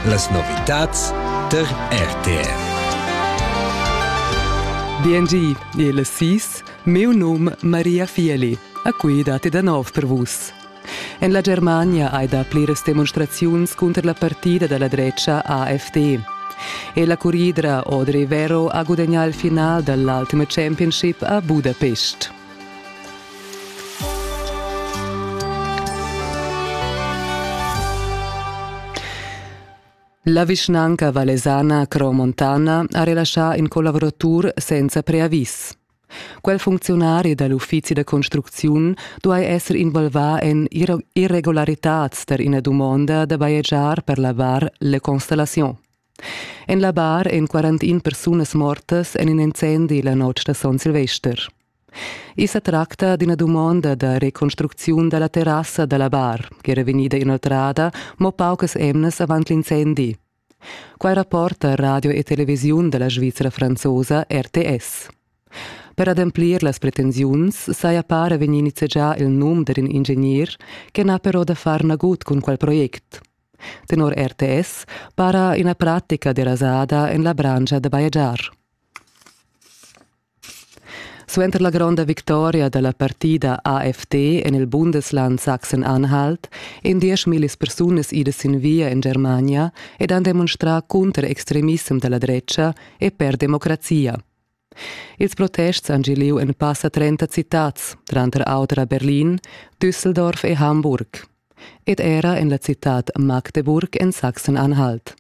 Las novitads tar RTR. BNG è la sis, meu num Maria Fieli, a cui date da nov per vus. En la Germania hai dà pliras demonstraziuns cunter la partida da la drecha AfD. E la curridra Audrey Vero ha gudagnà il final dall'ultima championship a Budapest. La vischnanca valesana Cromontana ha relaschà in collaboratur senza preavis. Quel funcziunari dal uffizi da construcziun duai esser involvà en irregularitads tar ina dumonda da bajegiar per lavar le constellazion. En la bar èn 41 persunas mortas en in incendi la notg da son Silvester. I sa tracta d'ina dumonda da reconstrucziun da la terrassa da la bar, ch'era vegnida inoltrada mo paucas emnas avant l'incendi. Quai rapporta radio e televisiun da la Svizra franzosa RTS. Per ademplir las pretensiuns saja para vegnì nizzegià il num d'in ingegner che n'ha però da far nagut cun quel project. Tenor RTS para ina pratica derasada en la branscha da bajegiar. Suenter la gronda victoria da la partida AFD en il Bundesland Sachsen-Anhalt èn dieschmillis persunas idas sin via en Germania ed han demonstrà cunter extremissem da la dretga e per democrazia. Ils protests han giu liug en passa trenta citads, tranter auter a Berlin, Düsseldorf e Hamburg ed era en la citad Magdeburg en Sachsen-Anhalt.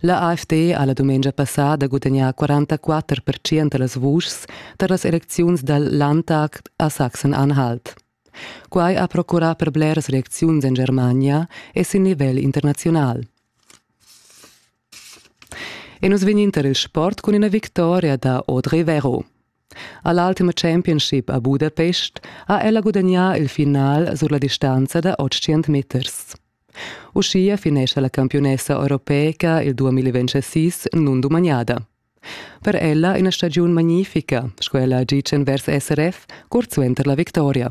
La AfD ha la dumengia passada gudagnà 44 percent da las vuschs tar las elecziuns dal Landtag a Sachsen-Anhalt. Quai ha procurà per bleras reacziuns en Germania e sin nivel internaziunal. E nus vegnin tar il sport cun ina victoria da Audrey Vero. A l'Ultima Championship a Budapest ha ella gudagnà il final sur la distanza da 800 meters. Uschia finescha la campiunessa europeica il 2026 nundumaniada. Per ella ina stagiun magnifica, sco ella ha ditg vers SRF, curt suenter la victoria.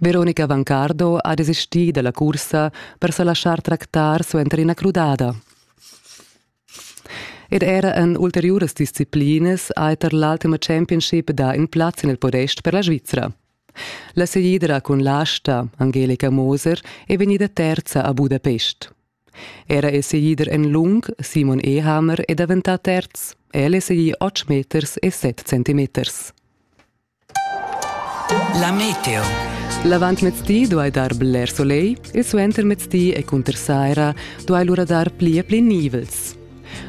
Veronica Vancardo ha desistì da la cursa per sa laschar tractar suenter ina crudada. Ed era en ulteriuras disciplinas ha er tar l'ultima championship dà in plaz en il podest per la Svizra. La seguidra cun l'asta, Angelica Moser, è vegnida terza a Budapest. Era è seguider en lung, Simon Ehammer è daventà terz. El è seguì 8 meters e 7 centimeters. La meteo. L'avantmezdi duai dar bler solegl e suentermezdi e cunter saira duai lura dar pli e pli nivels.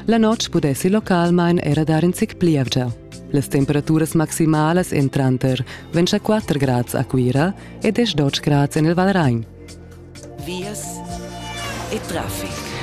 La notg pudessi localmain era dar in zic plievgia. Las temperaturas maximalas èn tranter 24 grads a Cuira e 10 grads en il Valrain. Vias e traffic.